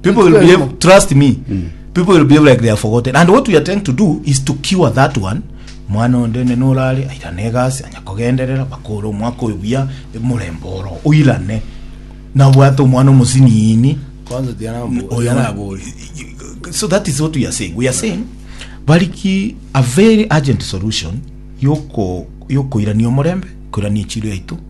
people will be able, trust me people will behave like they are forgotten and what we are trying to do is to cure that one mwana onde nene orare airane egasi anya kogenderera bakore omwaka oyo buya omorembe oro oirane nabwate omwana omosiniini kwanza tiana Oyo- tiana abori so that is what we are saying we are saying bariki a very urgent solution yoko yokoirania omorembe koirania echiro yaito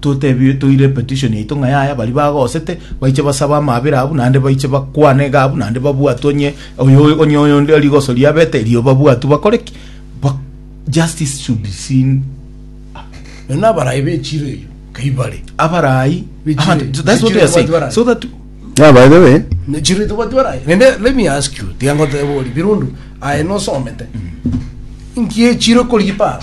Totebie toire epetition yaito ng'a yaya baria bagosete baiche basabe amaabera abwo naende baiche bakwane iga abwo naende babwatwe onye oyo onye oyonde rigoso riabete erio babwatwe bakore ki? Ba justice should be seen Nonya na abarayi bechire eyo kai bare abarayi Bichire- Ahandi, that's what bichire we are saying. watu barayi. So that Yeah, by the way, chiro itobwati barayi nende let me ask you tiga ngoteba ori birundu aye nosomete nki echiro kori ipara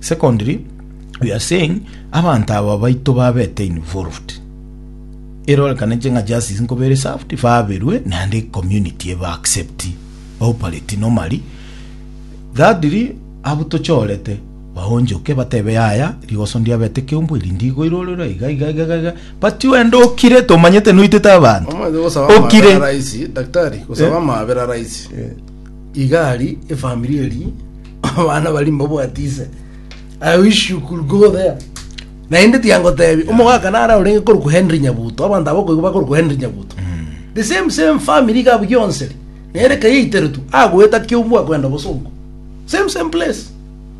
Secondly, we are saying abanto aba baito babete involved, erorekanete ng'a justice nkoba ere served, baberwe naende community ebe accept baoperate normally. Thirdly, abwo tochorete baonchoke batebe yaya rigoso ndiabete keumbu eri ndigo irorerwa iga iga iga iga iga but wende okire tomanyete noitete abanto Omanyete gosaba Okire. amabera rahisi, daktari, gosaba amabera rahisi. Igari efamiri eri abana bari mbabwati ise I wish you could go there naende tiangotebi omogaka nara orenge korokwa Henry Nyabuto abanto abo koigwa bakorokwa Henry Nyabuto the same same family iga abwo gionsi eri nere kayaiteretwe agoeta kiobua kwenda bosongo same same place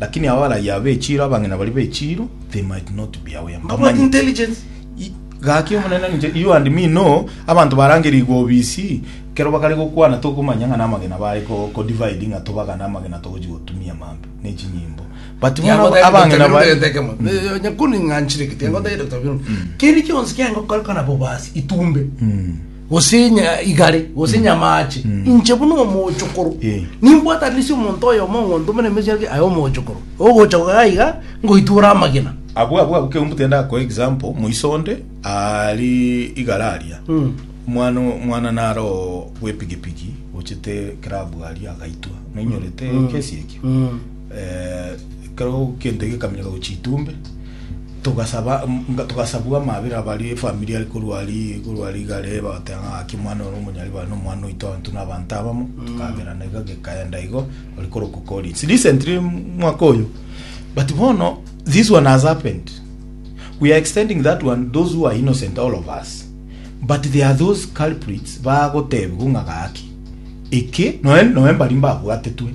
Lakini abarayia aba echiiro, abang'ina baria be chiiro, they might not be aware, About mbamanye. intelligence. I- Gaki omonene ninche, you and me know, abanto barangerigwe obisi, kero bakare gokwana tokomanya ng'a namagena bare ko- ko divide ng'a tobagane amagena togochi gotumia mambe, ne chinyimbo. But bono aba- abang'ina bare, nyakuni ng'anchire gete yangoteire Dr. Biruka. keri kionsi kiangokoreka nabo basi itumbe Mm. gose nya- igare gose nyamaache inche buna omochokoro Eh. nimbwatanisi omonto oyomo ong'onto omene emechie ake aye omochokoro ogocha goga iga ngoitwore amagena abwo abwo abwo keumbu tenda ako example moiso onde ari igara aria Mm. mwana mwana naro gwepigipigi ochete club aria agaitwa noinyorete kesi ekio Mm. Ekero gento gekaminyora gochia itumbe, togasaba, togasabwa amabera abare efamiri are korwa aria, korwa rigare, bagateba ng'a gaki omwana ore omonyaribare na omwana oito abanto na abanto abamo, tokaberana iga gekaenda igo, ore korokwa Collins. Recently mwaka oyo, but bono, this one has happened, we are extending that one those who are innocent all of us, but there are those culprits bagotebiwa ng'a gaki, eke, nonya, nonya mbari mbabwatetwe.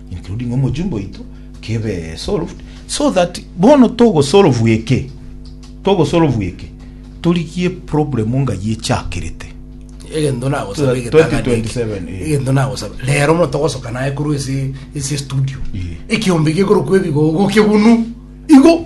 including omojumbe oito kebe solved so that bono togo solve eke togo solve eke torigie problem ngayi echakerete egento nagosaba egetang'ani eke. 2027, eh. egento nagosaba rero mono togosoka naye korwa ase ase studio Eh. ekiombe gekorokwa ebigogo kebunu igo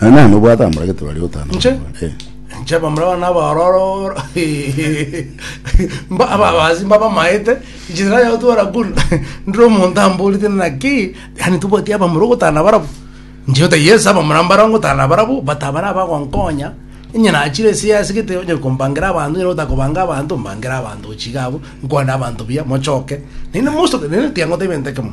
Na nani obwate amoragete baria otano? Nche? Eh. nche bamuraba nabaroro mba ababasi mbabamaete ijira yao twara kun ndire omonto amborete naki yani tobwati abamura ogotana barabu nche ota yes abamura mbara ngotana barabu but abara abagonkonya inye nachire ase yase gete onye kombangira abanto nyene otakobanga abanto mbangera abanto gochia iga abwo nkwane abanto buya mochoke naende most of the naende tiagotebi egento ekemo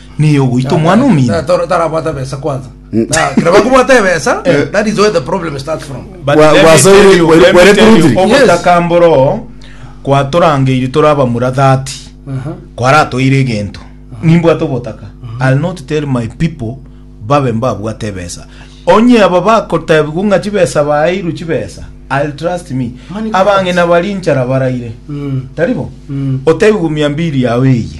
Niye ogoita omwana omino. Ta- ta- tarabwate ebesa kwanza Mm. Na, kira bakobwata ebesa that is where the problem starts from But Wa- let me wasoire- tell you- were- let me were tell you, truthful. ogotakambora oo kwatorangeiri tore abamura 30 kwaratoire egento nimbwate obotaka i'll not tell my people babe mbabwate ebesa onye aba bakotebigwa ng'a chibesa baeirwe chibesa i'll trust me Money abang'ina bari nchara baraire taribo otebigwa mia mbiri yawe eye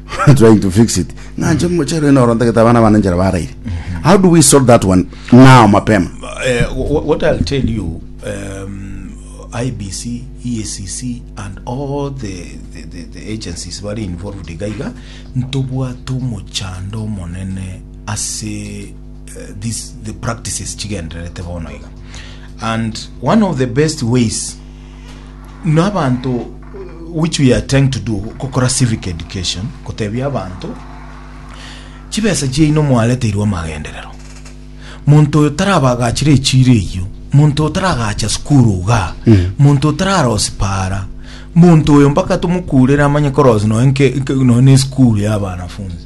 trying to fix it nganje mochero ino oro ntagete abana bana njera baraire how do we solve that one now mapema Eh, wh- what I'll tell you, um, IBC, EACC, E and all the, the, the, the agencies bari involved igaiga ntobwate omochando omonene ase uh, this, the practices chigendererete bono iga and one of the best ways nabanto which we are trying to do gokora civic education gotebia abanto chibesa chiaino mwareteirwe amagenderero monto oyo tarabagachire echiro eyio monto oyo taragacha skuru iga monto oyo tararosi para monto oyo mpaka tomokurere amanye korosi noe nke- nke- noe ne skuru ya abanafunzi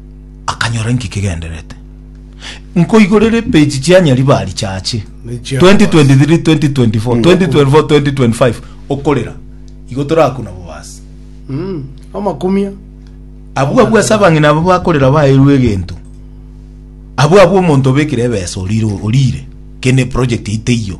akanyora inki kegenderete. Nkoigorera epeji chia Nyaribari chache 2023 2024 2024 2025 okorera igo torakuna bobasi mm, amakumia abwo abwo ase abang'ina abo bakorera baerwe egento abwo abwo omonto obekire ebesa orire orire kende project ite iyo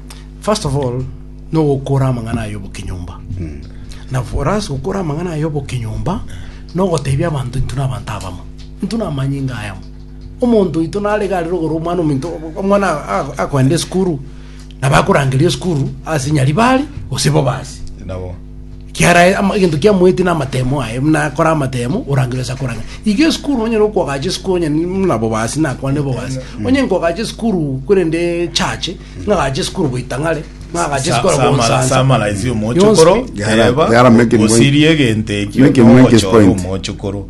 First of all, no gokora amang'ana aye obokinyumba. Na for us gokora amang'ana aye obokinyumba no gotebia abanto intu na abanto abamo. Intu na amanyinga ayamo. Omonto oito nare gare rogoro omwana ominto omwana a- a- akoenda esukuru na bakorangeria esukuru ase nyaribari gose bobasi. Nabo. Kiara ama- egento kiamoeti na amatemo aye muna akora amatemo orangire ase akoranga. Iga esukuru onyare okoagacha esukuru onye ni- muna bobasi na akwane bobasi. Onye nkoagacha esukuru korende church Nagache sikuru goita ng'are, nagache sikoro Sa- samala- gonsansa. samalaisi omochokoro Yonsi. Gara- teba gara make ni- osirie egento ekio Make ni- make is nogochora point. omochokoro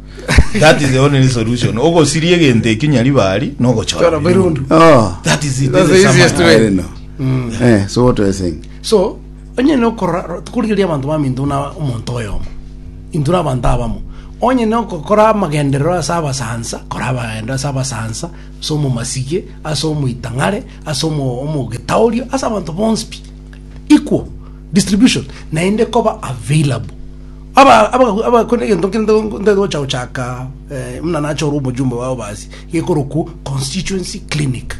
that is the only solution ogosiria egento ekio nyaribari nogochora Chora birundu birundu. Oh, that is it, That's the the easiest summary. I way. don't know. Eh, so what are you saying? so onye nokorora tukorigeria abanto bami intuna omonto oyomo intuna abanto abamo onye nokokora amagenderero ase abasansa kora amagenderero ase abasansa ase omomasigie ase omoitang'are ase omo- omogetaoria, ase abanto bonsi pi, equal distribution, naende koba available. Aba- aba- abakore egento nkere nto- ntoete gocha gochaka eh, muna nache ore omojumbe wao basi gekorokwa constituency clinic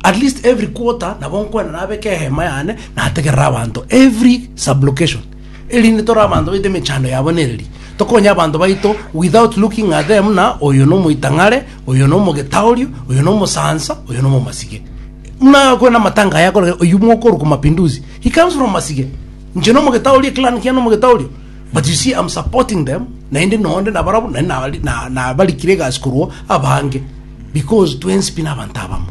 at least every quarter nabo nkwena nabeke ehema yane nategerera abanto every sublocation erinde tore abanto baito emechando yabo nereri tokonye abanto baito without looking at them buna oyo nomoitang'are oyo nomogeta oria, oyo nomosansa, oyo nomomasike. Muna akore namatanga aya akore oyu mokorwa kwa mapinduzi. He comes from masike. Nche nomogeta oria clan kia nomogeta oria. But you see I'm supporting them naende nonde na barabo na nari- na na barikire egasi korwa abange because twensi pi nabanto abamo.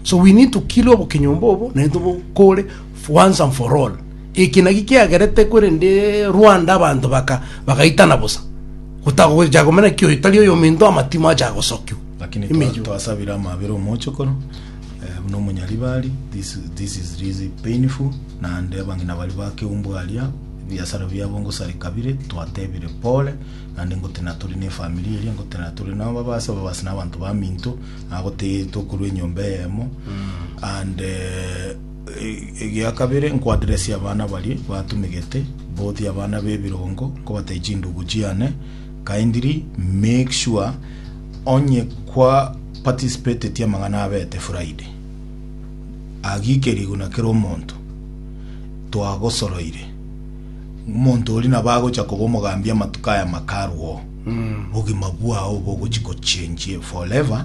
So we need to kill obokenyomba obo naende tobokore once and for all. Eki naki kiagerete, korende Rwanda abanto baka bagaitana bosa, gotaga gocha komera ng'aki oyo tari oyominto, amatimo acha gosokigwa. Lakini twa- Emeyo. twasabire amabera omochokoro eh, buna omonyaribari this, this is really painful naende abang'ina baria bakeumbwa aria ebiasara biabo ngosareka bire twatebire pole naende ngotenena tore ne efamiri eria ngotenena tore nabo ababase ababase na abanto baminto nabo te- tokorwa enyomba eyemo and eh, Egia kabere, nkwaderesie abana baria batumegete, both abana b'ebirongo, nkobatebia chindugu chiane, kindly make sure onye kwa participated amang'ana abete Friday, agike riguna kera omonto, twagosoroire, omonto oria nabo agocha koba omogambi amatuko aya makarwa oo, obogima bwao obo ogochi gochenjie forever.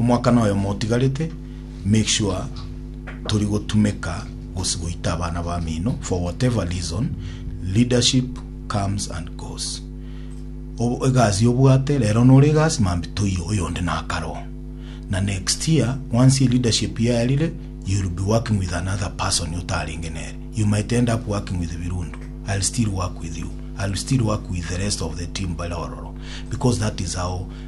Omwaka noyomo otigarete, make sure tori gotumeka gose goita abana bamino for whatever reason, leadership comes and goes. Obo egasi obwate rero nore egasi mambi toiyo oyonde nakare oo. Na next year once e leadership yaerire you will be working with another person otarenge nere. You might end up working with Birundu. I'll still work with you. I'll still work with the rest of the team bare ororo because that is how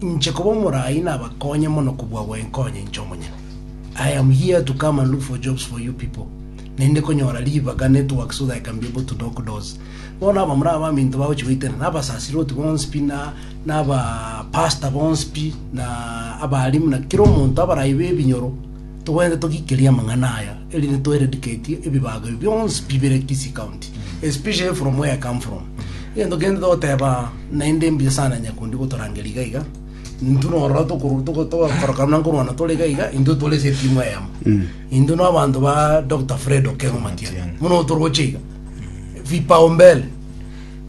Inche koba omoraai nabakonye mono kobua gwenkonya inche omonyene. I am here to come and look for jobs for you people. Naende konyora ribaga, network, so that I can be able to knock doors. Bono aba more abaminto bagochi goitera, na abasasiroti bonspi, na, na aba pastor bonspi, na abalimu, na kera omonto abarai b'ebinyoro, togwenerete togikerie amang'ana aya. Erinde toeradicatie ebibago ebi bionsi bibere Kisii County, especially from where I come from. Egento kende togoteba naende mbuya sana Nyakundi gotorangeria iga iga. Intwe norora tokoru- toko- togakoroka buna nkorwana tore iga iga, intwe tore ase etimu eyemo. Intwe na abanto ba Dr. Fred Okengo Matiang'i, buna otoroche iga. Vipaumbele,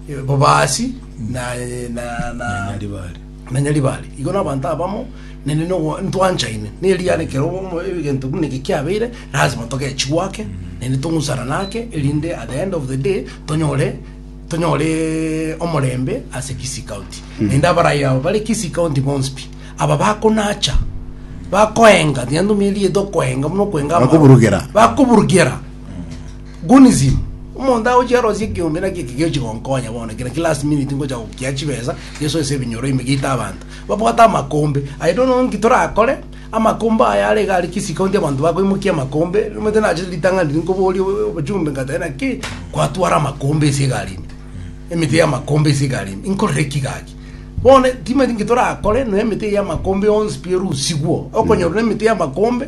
eh, bobaasi na- na- na- Nyaribari. Manya ribare, igo nabanto abamo nende nogo- ntwanchaine, neriara ekero obomo egento buna eke kiabeire, lazima togechie gwake, naende tong'usana nake, erinde at the end of the day, tonyore tonyoreeee omorembe ase Kisii county. Naende abarai aba bare Kisii county bonsi pi, aba bakonacha, bakoenga, tiga ntumia erieta okoenga buna okoenga amaro. Bakoburugera. Bakoburugera. Gunism, Omonto agochia arosie ekeombe naki eke gegochia gonkonya bono, ekero ki last minute ngocha gokia chibesa, Yeso ase ebinyoro ime gieta abanto babwate amakombe. I don't know nki torakore, amakombe aya are iga are kisi county abanto bakoimokia amakombe, omanyete nachete ritang'ani riria nkoboria o- obojumbe nkabatebi naki kwatwara amakombe ase egari ime, emete ya amakombe ase egari ime, inkorere ki gaki? Bono timanyeti nki torakore, noe emete eye ya amakombe yonsi pi erusigwo, okonyorwa na emete ya amakombe.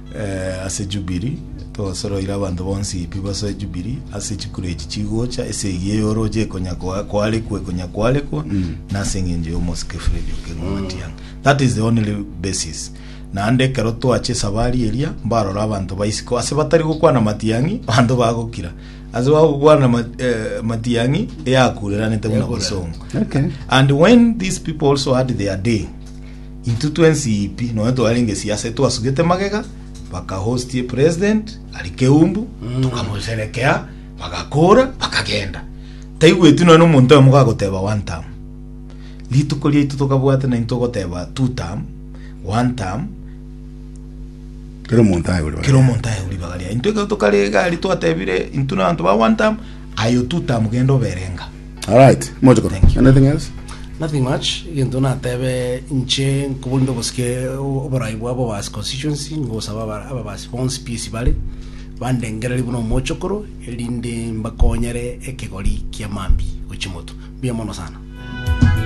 Ase Jubili, togosoroire abanto bonsi pi bosa ejubili, ase chikura echi chigocha, esegi ey'orooche ekonya koa- koarekwa, ekonya koarekwa, na ase eng'encho y'omosike Fredi okerwa Matiang'i. That is the only basis. Naende ekero twache esabari eria, mbarora abanto ba isiko, ase batari gokwana Matiang'i, abanto bagokira. Ase bagokwana Ma- eh, Matiang'i, eyakureranete buna bosongo. Okay. And when these people also had their day, Intwe twensi pi nonya twarenge siase twasugete magega bakahostie president ari keumbu tukamosherekea bagakora bakagenda taigweti nonya omonto oyo mogagoteba one time rituko riaitu tokabwate na intwe ogoteba two time one time kero omonto aye kera omonto aye ribaga ria intwe ekero tokarega ari twatebire intwe na abanto ba one time aye two time genda oberenga All right, moche koro. Thank you. Anything else? Nothing much. Egento natebe nche nkobonde obosike o- oborai bwa Bobasi constituency ngosaba aba- ababasi bonsi PS bare bandengereri buna omochokoro erinde mbakonyere ekegori kia mambi gochia moto. Mbuya mono sana.